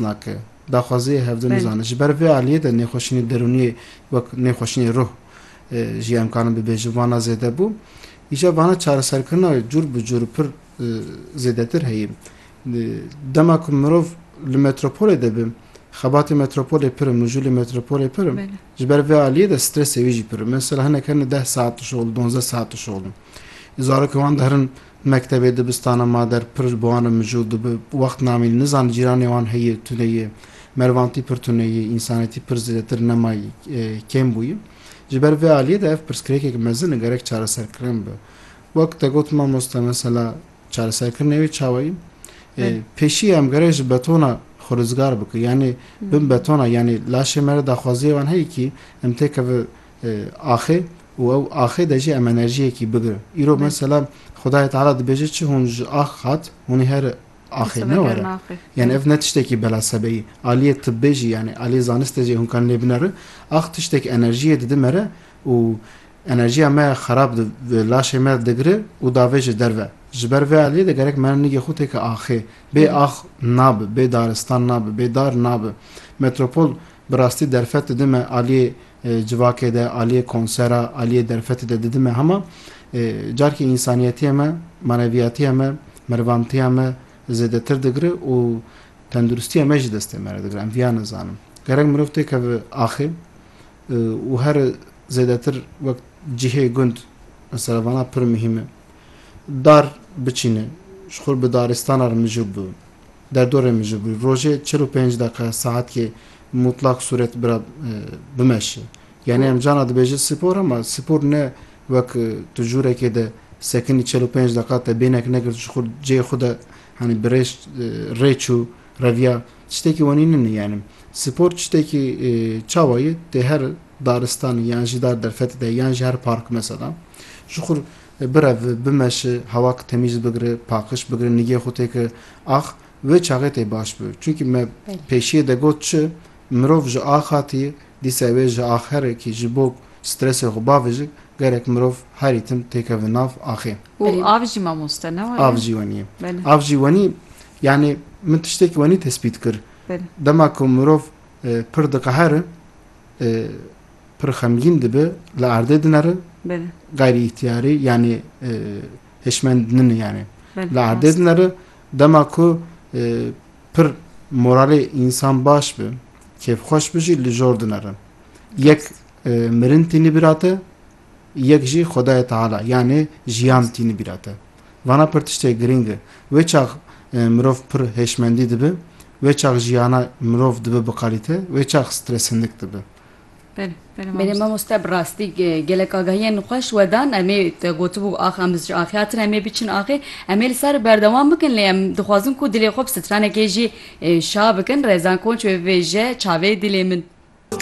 nake. Daxwaziyê hevdin Belê. bizane. Ji ber vê aliyê de nêxweşînê derûniyê wek nêxweşînê ruh jî em karin bibêjin vana zêde bû. Îşev vana çareserkirina wê cûr bi cûr û pir zêdetir heye. Dema ku mirov li metropolê de be xebatê metropolê pir in, mijûlê metropolê pir in. Belê. Ji ber vê aliyê de stresê wî jî pir in. Mesela hinek herin deh saet dişoxilin, donzdeh saet dişoxilin. Zarokên wan de herin Mektebê dibistana ma der pir bi wan re mijûl dibe. Wext namîn nizan cîranê wan heye tune ye. Merivantî pir tune ye, însanetî pir zêdetir nema ye, kêm bûye. Ji ber vê aliyê de ev pirsgirêkek mezin e gerek çareserkirin be. Wek te got mamoste mesela çareserkirinê wê çawa ye? Pêşî em gerek ji betona xwe rizgar bikin. Yanî bin betona yanî laşê me re daxwaziyê wan heye kî em têkeve axê û ew axê de jî em enerjiyekî bigirin. Îro mesela Xwedayê Teala dibêje çi hûn ji ax hat hûnî her axê ne were. Yanî ev ne tiştekî bela sebeyî. Aliyê tibbê jî yanî aliyê zaniste jî hûn kan lê binerin. Ax tiştek enerjiyê dide me re û enerjiya me xerab di laşê me digire û davê ji derve. Ji ber vê aliyê de gerek me nigê xwe têke axê. Bê ax nabe, bê daristan nabe, bê dar nabe. Metropol bi rastî derfet dide me aliyê Civakê de, aliyê konsera, aliyê derfetê de didime hema carkî însaniyetiyê me, maneviyatiyê me, merivamtiya me zêdetir digire û tenduristiyê me jî destê me re digire. Em viya nizanim. Gerek mirov têkeve axê û here zêdetir wek cihê gund mesela vana pir muhîm e. Dar biçîne, ji xwe bi daristana re mijûl bibe. Derdorê min ji bo rojê çil û pênc deqe saetkê mutlak sûret bira bimeşe. Yanî em cana dibêjin spor ama spor ne wek tu jûrekê de sekinî çil û pênc deqa te bêhnek nekir ji xwe cihê xwe de henî bi rê rê çû reviya tiştekî wenî nini yanî spor tiştekî çawa ye tu her daristanê yan jî dar derfetê de yan jî her park mesela ji xwe Birev bimeşi, hewak temîz bigiri, paqiş bigiri, nigê xwe tê ki ax, wê çaxê tê baş bi. Çunkî me pêşiyê de got çi, mirov ji ax hatî, dîsa wê ji ax here kî ji bo stresê xwe bavijik, gerek mirov herî tim têkeve nav axê. Û av jî mamoste ne waye? Av jî wenî. Av jî wenî, yanî min tiştekî wenî tespît kir. Dema ku mirov pir diqeheri, Pir xemgîn dibe, li erdê dinere, gayrî îhtiyarî yanî hişmend nini yanî li erdê dinere. Dema ku pir moralê însan baş bi, kêfxweş bi jî li jor dinere. Yek mirin tînî bîra te, yek jî Xwedayê Teala yanî jiyan tînî bîra te. Vana pir tiştê girîng e. Wê çax mirov pir hêşmendî dibe, wê çax jiyana mirov dibe bi qalîte, wê çax stresîndik dibe. Belê mamoste bi rastî gelek agahiyên xweş we dan. Em ê te gotibû ax em ji axê hatine em ê biçin axê. Em ê li ser berdewam bikin lê em dixwazin ku dilê xwe bi stranekê jî şa bikin. Rezan Konç wê bibêje, Çavê dilê min.